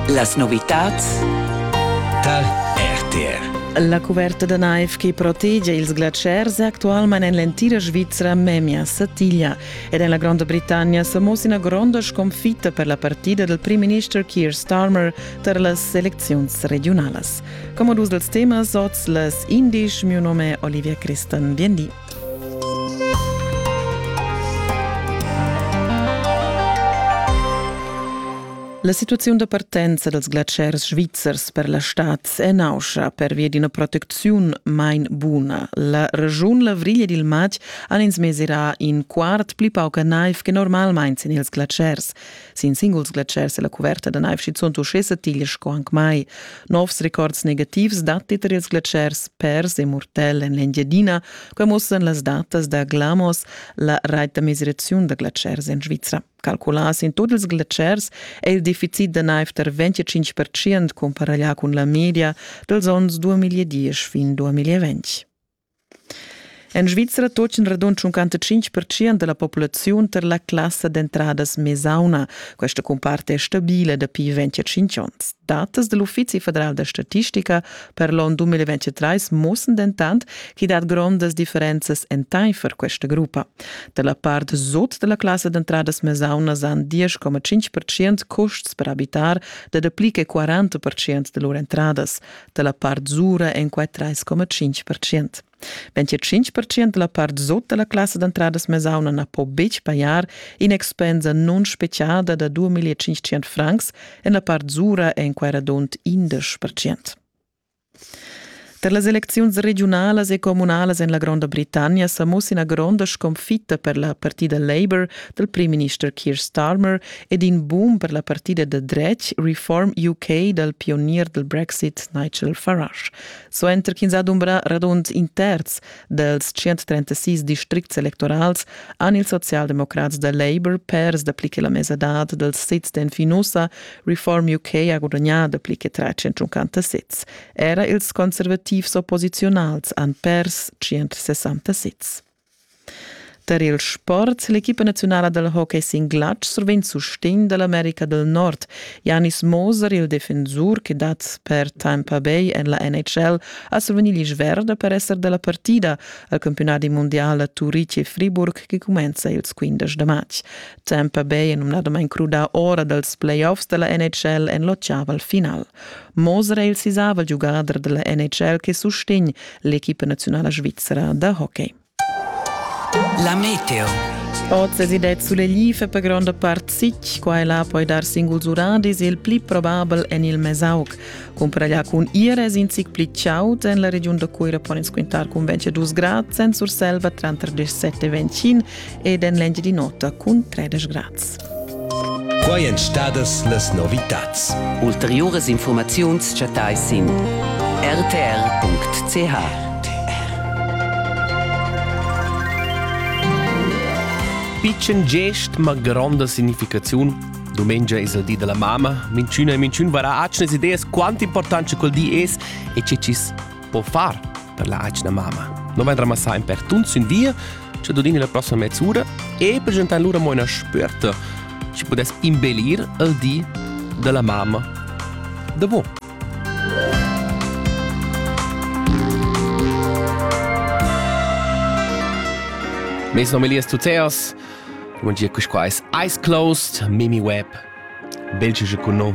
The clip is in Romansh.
Las novitads tar RTR. La cuverta da naiv che protegia ils glatschers è actualmain en l'entira Svizra memia satiglia ed en la Gronda Britannia sa mussa ina gronda sconfitta per la partida dal primminister Keir Starmer tar las elecziuns regiunalas. Come dus dals temas oz las indisch, mio nome è Olivia Christan Viendi. La situaziun da partenza dals glatschers svizzers per la stad è nauscha pervia d'ina protecziun main buna. La regiun Lavriglia dil Matg han ins mesirà in quart pli pauca naiv che normalmain sin ils glatschers. Sin singuls glatschers è la cuverta da naiv schizunt uschè satigl sco anc mai. Novs records negativs datti tar ils glatschers pers e mortel en l'Engiadina. Quai muossan las datas da Glamos, la rait da mesiraziun da glatschers en Svizra. Calculà sin tut ils glatschers è il deficit da naiv tar 25% comparaglià cun la media dals onns 2010 fin 2020. En Svizra tochen radund 55 percent dalla populaziun tar la classa d'entradas mesauna. Questa cumpart è stabile dapi 25 onns. Datas dall'Uffizi federal da statistica per l'onn 2023 mussen dentant ch'i dat grondas differenzas entaifer questa gruppa. Da la part sut dalla classa d'entradas mesauna san 10,5 percent custs per abitar da dapli che 40 percent da lur entradas. dalla part zura en quei 3,5 percent. Wenn che 5 percent della part sot della classe d'entradas mesauna na po betg pagar in'expensa non speciada da 2500 francs en la part zura en quei radont 11 percent. Per las elecziuns regiunalas e comunalas en la Gronda Britannia sa muss ina gronda sconfitta per la partida Labour dal primminister Keir Starmer ed in boom per la partida da dretg Reform UK dal pionier dal Brexit Nigel Farage. Suenter ch'ins ha dumbrà radund in terz dals 136 districts electorals han ils socialdemocrats da Labour pers dapli che la mesadad dals sezs d'Enfinusa. Reform UK ha gudagnà dapli che 350 sezs. Era ils conservativs opposiziunals han pers 160 sezs. Tar il sport ha l'equipa naziunala dal hockey sin glatsch survegn sustegn da l'America del Nord. Janis Moser, il defensur che dat per tempo bei en la NHL, ha survegni l'isch verda per esser da la partida al campionati mondial a Turitg e Friburg che cumenza ils 15 da matg. Tempo bei è numnadamain crudà ora dals playoffs da la NHL en l'otgava al final. Moser è il sisavel giugader della NHL che sustegn l'equipa nazionala svizzera da hockey. La meteo. Oz es id sulle life per gronda part sic, qua e là poi dar singuls uradis, il pli probabel en il Mesaug. Cumpra lla cun ires in sic pli ciaut en la regiun da Cuira pon ins quintar cun 22 grad, en Surselva tranter 17 e 25 ed en l'engi di nota cun 13 grad. Quai èn stadas las novitads. Ulteriuras infurmaziuns chattais sin rtr.ch. Pitschen gest ma gronda significaziun. Dumengia es il di della mamma, minchüna e minchün varà atschnas ideas quant importante col di es e che chi's po far per la atgna mamma. Non vem ramassar in per tuns in via, ci dodini la prossima mezz'ora e presentan lura mo una sperta ci podes imbelir il di della mamma da bo. Mes nom Elias Tuteas, un dia quis quais Ice Closed, Mimi Webb, belge je con nom.